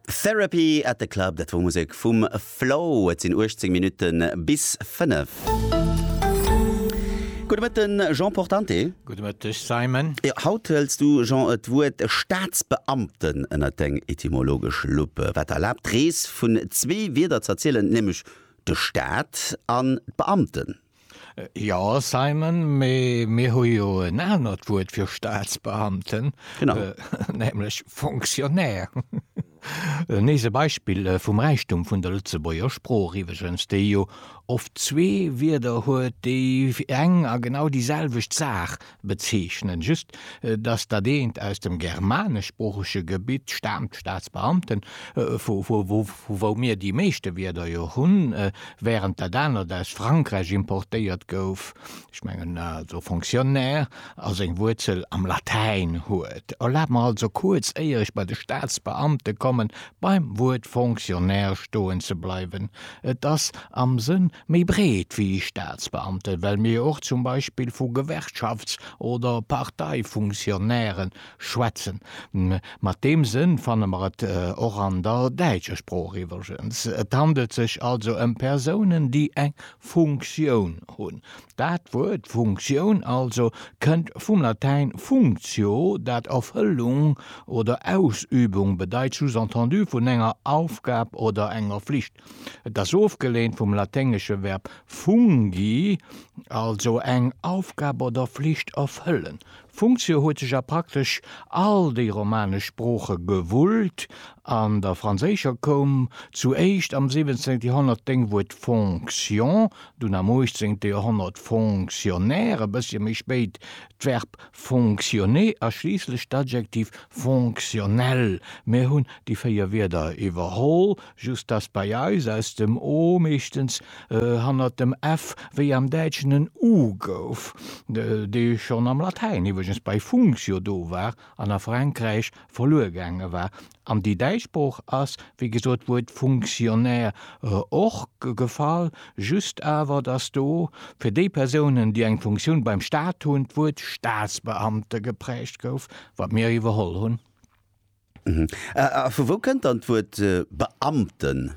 Therapy at the Club, dat wor Musek vum Flow. Et sinn 18 Minutten bis 5. Gudde Mëtten, Jean Portante. Gudde Mëtteg, Simon. Jo, haut hëls du, Jean, et Wuert Staatsbeamten ënnert deng etymologesch Lupp, wat der erlaabt, d'Rees vun zwee Wierder z'erzielen, nämlech de Staat an d'Beamten. Jo, Simon, mee mir hu jo en anert Wuert fir Staatsbeamten, nämlech Fonctionnaire. Nees e Beispill vum Räichtum vun der Lëtzebuerger Sprooch iwweregens, déi jo oft zwee Wierder huet, déi fir eng a genau déi selwecht Saach Bezeechnen just, dass dat eent aus dem germaneschsproochege Gebitt staamt, Staatsbeamten, vu wou mir déi meeschte Wierder jo hunn, während dat anert aus Frankräich importéiert gouf, ech mengen also Fonctionnaire, a seng Wuerzel am Latäin huet. Erlaabt mer also kuerz, éier ech bei de Staatsbeamte kommen, beim Wuert Fonctionnaire stoen ze bleiwen. Et ass am Sënn Méi breet wéi Staatsbeamten, well mir och zum Beispill vu Gewerkschafts oder Parteifunktionnairen schwätzen. Mat deem Sënn fanne mer et och an der däitscher Sprooch iwwregens. Et handelt sech also ëm Persounen, déi eng Funktioun hunn. Dat Wuert Funktioun also kënnt vum Latäin functio, dat Erfëllung oder Ausübung bedeit, sous-entendu vun enger Aufgab oder enger Flicht. Et ass ofgeleent vum laténgesche Verb fungi, also eng Aufgab oder Flicht erfëllen. Funktio huet sech a praktesch all déi romanesch Sprooche gewullt. An der franséischer koum zu éischt am 17. Joerhonnert d'Déngwuert fonction, dunn am 18. Joerhonnert fonctionnaire, e bëssche méi spéit d'Verb fonctionner a schliisslech d'Adjektiv fonctionnel. Mir hunn déi véier Wierder iwwerholl, just dass bei eis aus dem o meeschtens hannert dem f wéi am Däitschen en u gouf, dee schonn am Latäin iwwregens bei functio do war an a Frankräich verluer gaange war. An déi däitsch Sprooch ass, wéi gesot, d'Wuert Funktionär och gefall, just awer, dass do fir déi Persounen, déi eng Funktioun beim Staat hunn, d'Wuert Staatsbeamte geprägt gouf, wat mir iwwerholl hunn. A vu wou kënnt dann d'Wuert Beamten?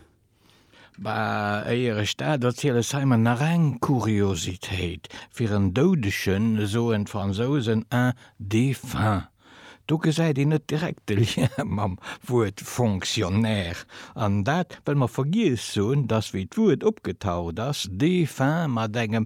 Bah, éier ech dat erziel, es hei mer nach eng Kuriositéit, Fir en Doudegen soen d'Fransousen un défunt. Do gesäit een net direkt de Lien mam Wuert Fonctionnaire. An dat, well mer vergiess hunn, dass wéi d'Wuert opgetaucht ass, défunt mat engem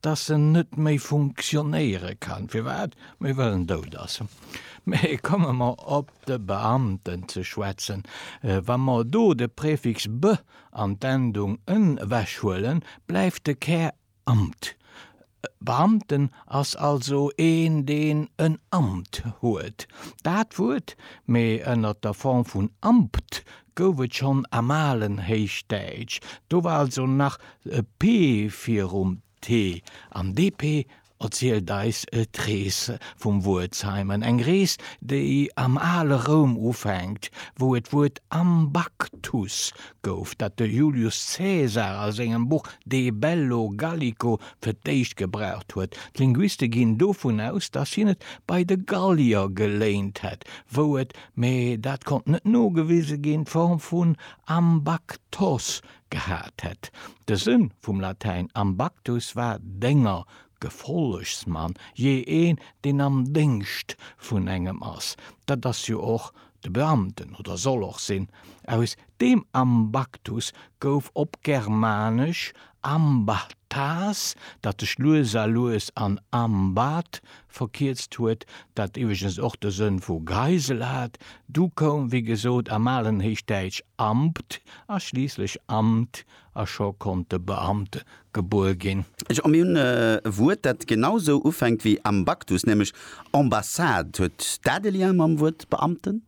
dass en net méi funktionéiere kann, firwat méi well en dout ass. Mee komme mer op de Beamten ze schwätzen, Wa mer do de Prefix be an d'Endung en ewechhuelen, bleift de Kär Amt. Beamten ass also een, deen en Amt huet. Dat Wuert, mee ënner der Form vun Ampt, gouf et schonn am alen Héichdäitsch, do war also nach e p virum t, an dee p erzielt eis d'Rees vum Wuert Simon, eng Rees, déi am ale Roum ufänkt, wou et d'Wuert Ambactus gouf, dat de Julius Caesar a sengem Buch De bello Gallico fir d'éischt gebraucht huet. D'Linguiste ginn dovun aus, datt hien et bei de Gallier geléint hätt, wou et mee dat konnt net nogewise ginn, d'Form vun ambactos gehat hätt. De Sënn vum Latäin ambactus war Dénger, Gefollegsmann, jee een, deen am Déngscht vun engem ass. Dat ass jo och de Beamten, oder soll och sinn, aus D'Beem Ambactus gouf op Germanesch Ambathas, dat sech lues a lues an Ambath verkierzt huet, dat iwweregens och de Sënn vu Geisel hat. Du koum, wéi gesot, am alen Héichdäitsch Ambt a schliisslech Amt a scho konnt de Beamte gebuer ginn. Jo, mir hunn e Wuert, dat genau sou ufänkt wéi Ambactus, nämlech Ambassade. Huet dat e Lien mam Wuert Beamten?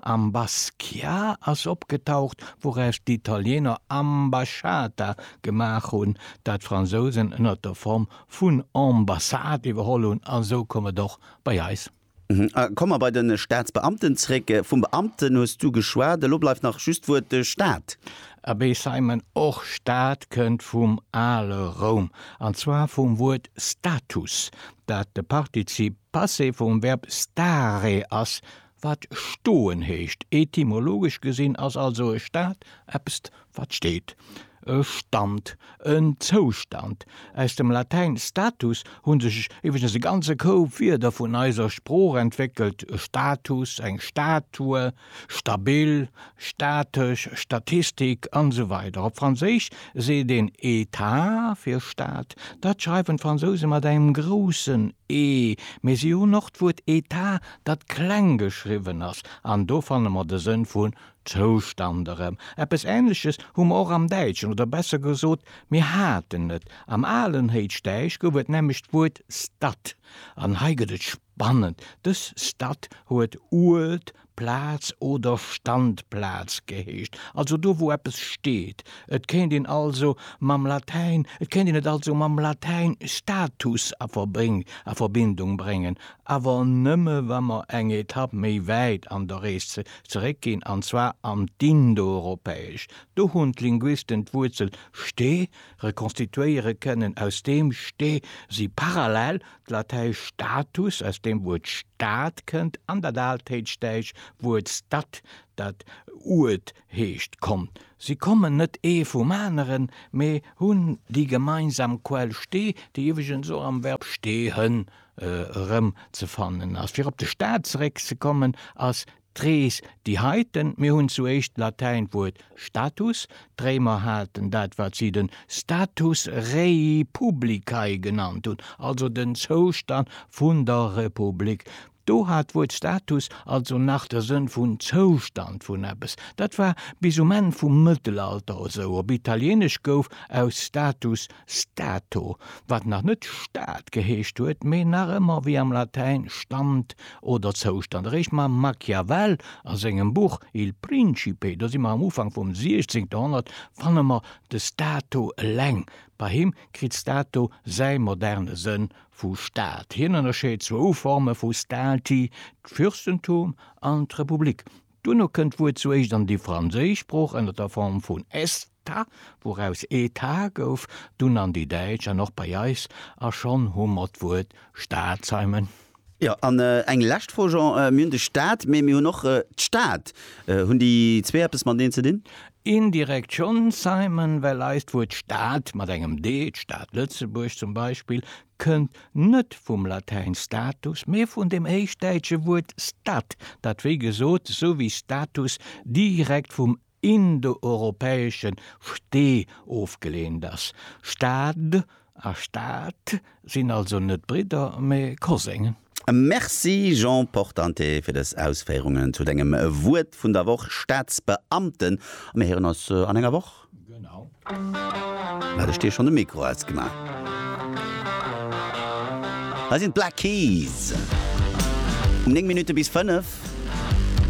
Am Basquiat ass opgetaucht, wouraus d'Italieener Ambasciata gemaach hunn, dat d'Fransousen ënner der Form vun Ambassade iwwerholl hunn, a sou koum et och bei eis. Komme mer bei de Staatsbeamten zréck. Vum Beamten hues du geschwat, elo bleift nach just d'Wuert Staat. Abee Simon, och Staat kënnt vum ale Roum, an zwar vum Wuert status, dat de Partizip Passé vum Verb stare ass, Wat stoen heescht. Etymologesch gesinn ass also e Stat eppest, wat steet. E Stand, en Zoustand. Aus dem Latäin status hu sech iwweregens e ganze Koup Wierder vun eiser Sprooch entwéckelt, e Status, eng Statue, stabil, statesch, Statistik, an esou weider Op Franséisch seet een État fir Stat. Dat schreiwen d'Fransouse mat engem groussen E, mee si hunn och d'Wuert Etat dat kleng geschriwwen ass, an do fanne mer de Sënn vun Zoustand erëm. Eppes Änleches hu mer och am Däitschen, oder besser gesot, mir haten et. Am alen Héichdäisch gouf et nämlech d'Wuert Stad, an hei gëtt et spannend, dës Stad huet Uert, Plaz oder Standplaz geheescht, also do, wou eppes steet. Et kéint een also mam Latäin, et kéint een et also mam Latäin status a Verbindung bréngen, awer nëmme wa mer eng Etapp méi wäit an der Rees zeréck ginn, an zwar an d'Indoeuropäesch. Do hunn d'Linguisten d'Wuerzel ste rekonstituéiere kënnen, aus deem ste si parallel d'Latäisch status, aus deem d'Wuert Stad kënnt, an dat Altéitschdäitsch Wuert stad, dat Uert heescht, konnt. Si kommen net ee vum aneren, mee hunn déi gemeinsam Quell ste, déi iwweregens och am Verb stehen. erëmzefannen ass. Fir op de Staat zeréckzekommen, ass d'Rees déi heiten. Mir hunn zuéischt d'Latäint Wuert status, d'Réimer haten dat wat si den status rei publicae genannt hunn, also den Zoustand vun der Republik. Do hat d'Wuert status also nach de Sënn vun Zoustand vun eppes. Dat war bis um Enn vum Mëttelalter esou. Op Italieenesch gouf aus status Stato, wat nach net Stad geheescht huet, mee nach ëmmer wéi am Latäin Stand oder Zoustand. Eréischt mam Machiavel a sengem Buch Il Principe, do si mer am Ufank vum 16. Joerhonnert, fanne mer de Stato eleng. Bei him kritt Stato säi moderne Sënn vu Stad. Hien ënnerscheet zwou Forme vu Stati, d'Fürstentum an d'Republik. Duerno kënnt d'Wuert zu éischt an déi franséisch Sprooch ënner der Form vun esta, wouraus Etat gouf, dunn an déi däitsch an och bei eis, a schonn hu mer d'Wuert Staatsheimen. Jo, an eng lescht Fro, Jean, mir hunn de Staat, mee mir hunn och d'Stad. Hunn déi zwee eppes mateneen ze dinn? Indirekt schonn, Simon, well eist Wuert Stad mat engem d, d'Stad Lëtzebuerg zum Beispill, kënnt net vum Latäin status, mee vun dem héichdäitsche Wuert stat, dat wéi gesot, sou wéi status, direkt vum indoeuropäesche sti ofgeleent ass. Stad a Staat sinn also net Bridder, mee Koséngen. Merci Jean Portante fir dës Ausféierungen zu dengem Wuert vun der Woch, Staatsbeamten. A mir héieren ons an enger Woch. Hat ech dir schonn de Mikro ausgemaach? Hei sinn d'Black Keys um 9 Minutte bis 5.